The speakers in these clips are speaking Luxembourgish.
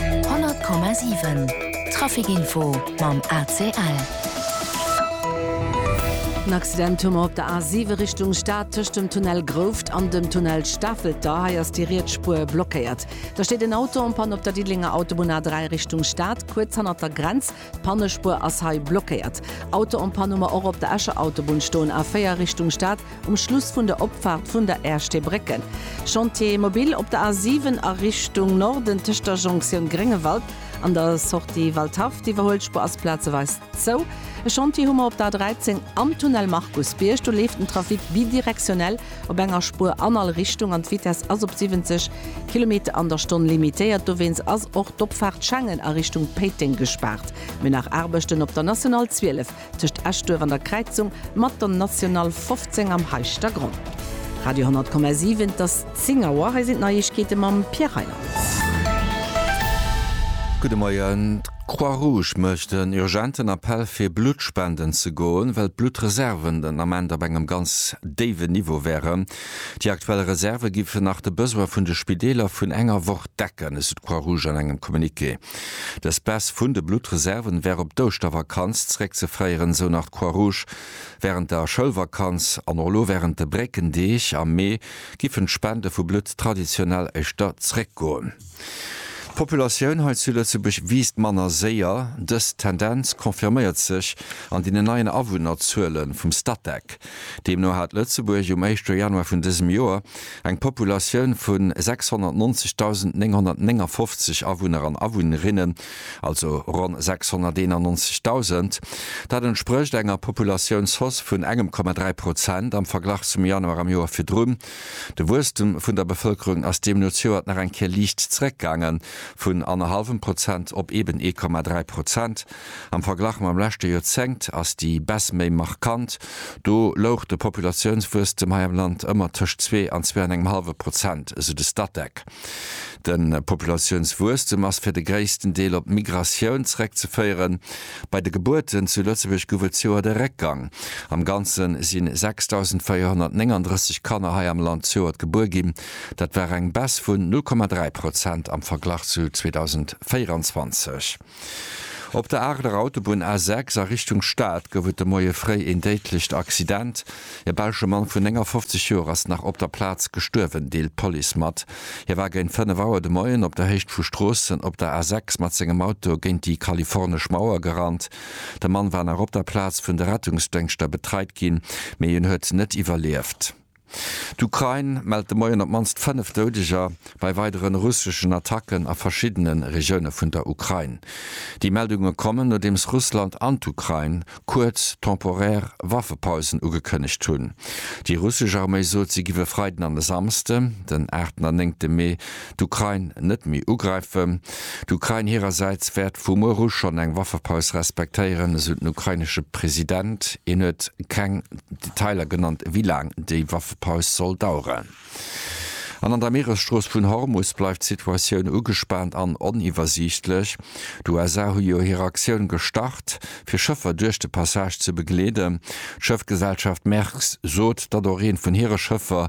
100,7 Trafic info mam ACL. En Accident hu mer op der A7 Richtung Stad tëscht dem Tunnel Grouft an dem Tunnel Stafelter. Hei ass déi riets Spuer blockéiert. Da steet en Auto en Panne op der Diddelenger Autobunn A3 Richtung Stad, kuerz hannert der Grenz. D'Pannespuer ass hei blockéiert. Auto en panne hu mer och op der Escher Autobunn stoen, A4 Richtung Stad, um Schluss vun der Opfaart vun der Ersteebrécke. Chantier mobile op der A7 a Richtung Norden tëscht der Jonktioun Gréngewald an der Sortie Waldhaff. D'Iwwerhuelspuer ass plazeweis zou. E Chantier hu mer op der A13 am Tunnel Markusbierg. Do leeft den Trafic bidirektionell. op enger Spuer an all Richtung an d'Vitess ass op 70 Kilometer an der Stonn limitéiert. Dowéinst ass och d'Opfaart Schengen a Richtung Péiteng gespaart. Mir hunn nach Aarbechten op der National 12 tëscht Eschduerf an der Kräizung mat der National 15 am Heischtergronn. Radio 10,7, et ass 10 Auer, hei sinn d'Neiegkeete mam Pierre Reyland. Gudde Moien. D'Croix-Rouge mécht en urgenten Appell fir Blutt spenden ze goen, well d'Bluttreserven den Ament op engem ganz déiwen Niveau wären. Déi aktuell Reserve géifen nach de Besoin vun de Spideeler vun enger Woch decken, esou d'Croix-Rouge an engem Communiqué. Dës Baisse vun de Bluttreserven wär op d'Ouschtervakanz zeréckzeféieren, esou nach d'Croix-Rouge. Wärend der Schoulvakanz an och elo wärend de Bréckendeeg am Mee giffen d'Spende vu Blutt traditionell éischter zeréckgoen. D'Populatioun hei zu Lëtzebuerg wiisst manner séier. Dës Tendenz confirméiert sech an deenen neien Awunnerzuele vum Statec. Deemno hat Lëtzebuerg um éischte Januar vun dësem Joer eng Populatioun vu 690.959 Awunner an Awunnerinnen, also ronn 691.000. Dat entsprécht enger Populatiounshoss vun engem Komma dräi Prozent am Verglach zum Januar am Joer virdrun. De Wuesstem vun der Bevëlkerung ass deemno zejoert nach eng Kéier liicht zeréckgaange vun annerhallwem Prozent op eben ee Komma dräi Prozent. Am Verglach mam leschte Joerzéngt ass déi Baisse méi markant, do louch de Populatiounswuesstem hei am Land ëmmer tëscht zwee an zwee an engem hallwe Prozent, esou de Statec. De Populatiounswuesstem ass fir de gréissten Deel op d'Migratioun zeréckzeféieren. Bei de Gebuerten zu Lëtzebuerg gouf et zejoert e Réckgang. Am Ganze si 6.439 Kanner hei am Land zejoert gebuer ginn. Dat war eng Baisse vun 0,3 Prozent am Verglach zu 2024. Op der Aarler Autobunn A6 a Richtung Stad gouf et de Moie fréi een déidlecht Accident. E belsche Mann vun 59 Joer ass nach op der Plaz gestuerwen, deelt d'Police mat. Hie war géint 5 Auer de Moien op der Héicht vu Stroossen op der A6 mat sengem Auto géint déi kalifornesch Mauer gerannt. De Mann war nach op der Plaz vun de Rettungsdéngschter betreit ginn, mee hien huet net iwwerlieft. D'Ukrain mellt de Moien op d'mannst 5 Doudeger bei weideren russeschen Attacken a verschiddene Regioune vun der Ukrain. Déi Meldunge kommen, nodeems Russland an d'Ukrain kuerz temporär Waffepausen ugekënnegt hunn. Déi russesch Arméi sot, si giff e Freiden an e Samsde, den 8. an 9. Mee, d'Ukrain net méi ugräifen. D'Ukrain hirersäits wäert vu muer u schonn eng Waffepaus respektéieren, esou den ukrainesche President. Hien huet keng Detailer genannt, wéi laang déi Waffepaus soll daueren. An an der Mieresstrooss vun Hormus bleift d'Situatioun ugespaant an oniwwersiichtlech. D'USA hu jo hir Aktioun gestart, fir Schëffer duerch de Passage ze begleeden. D'Schëffgesellschaft Maersk sot, datt och eent vun hire Schëffer,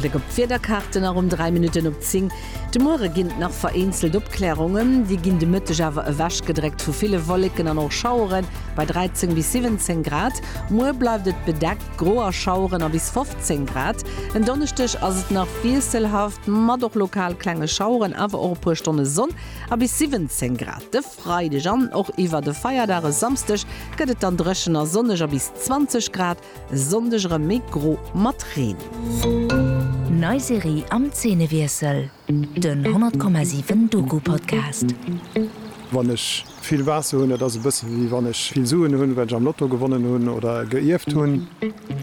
Bléck op d'Wiederkaarten a ronn 3 Minutten op 10. De Muere ginn et nach vereenzelt Opklärungen, déi ginn de Mëtteg awer ewechgedréckt vu ville Wolleken an och Schauere bei 13 bis 17 Grad. Muer bleift et bedeckt, gro a Schaueren a bis 15 Grad. En Donneschdeg ass et nach wiesselhaft mat och lokal klenge Schaueren, awer och e puer Stonne Sonn a bis 17 Grad. Freideg an och iwwer de Feierdag e Samsdeg gëtt et dann dréchen a sonneg a bis 20 Grad, e Sonndeg erëm méi gro mat Reen. Nei Serie am Zeenewiessel, den 100,7 Doku-Podcast. Wann ech vill Waasser hunn, dat ass e bësse wéi wann ech vill Suen hunn, well ech am Lotto gewonnen hunn oder geierft hunn.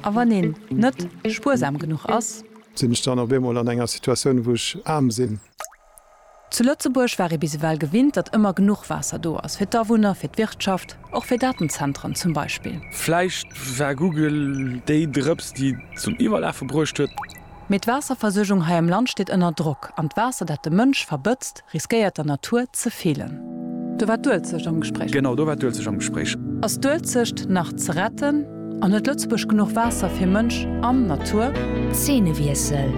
A wann een net spuersam genuch ass? Sinn ech dann op eemol an enger Situatioun, wou ech aarm sinn? Zu Lëtzebuerg war ee bis ewell gewinnt, datt ëmmer genuch Waasser do ass, fir d'Awunner, fir d'Wirtschaft, och fir Datenzentren zum Beispill. Vläicht war Google déi Drëps, déi et zum Iwwerlafe bruecht huet. Mee d'Waasserversuergung hei am Land steet ënner Drock, an d'Waasser, dat de Mënsch verbëtzt, riskéiert der Natur ze feelen. Do war d'Uelzecht am Gespréich. Genau, do war d'Uelzecht am Gespréich. Ass d'Uelzecht nach ze retten? An huet Lëtzebuerg genuch Waasser fir Mënsch an Natur? Zeenewiessel,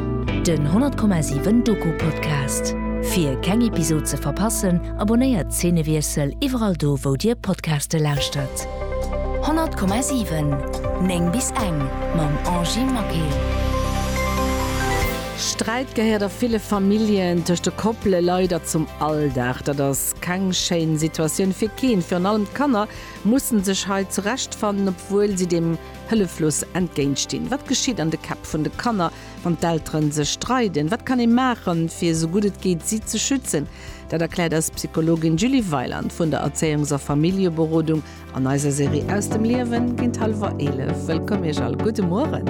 Den 100,7 Doku Podcast. Fir keng Episod ze verpassen, abonnéiert Zeenewiessel iwwerall do wou dir Podcaste lauschtert. 100,7 9 bis eng mam Angy Maquet. Sträit gehéiert a ville Familljen tëscht de Koppele leider zum Alldag. Dat ass keng schéin Situatioun fir keen, virun allem d'Kanner mussen sech hei zurechtfannen, obwuel si deem hëlleflos entgéintstinn. Wat geschitt an de Käpp vun de Kanner, wann d'Eltere sech streiden? Wat kann ee maachen, fir esou gutt et geet si ze schützen? Dat erkläert eis Psychologin Julie Weiland vun der Erzéiungs a Familljeberodung an eiser Serie Aus dem Liewen géint hallwer 11. Wëllkomm Iech all, gudde Mueren.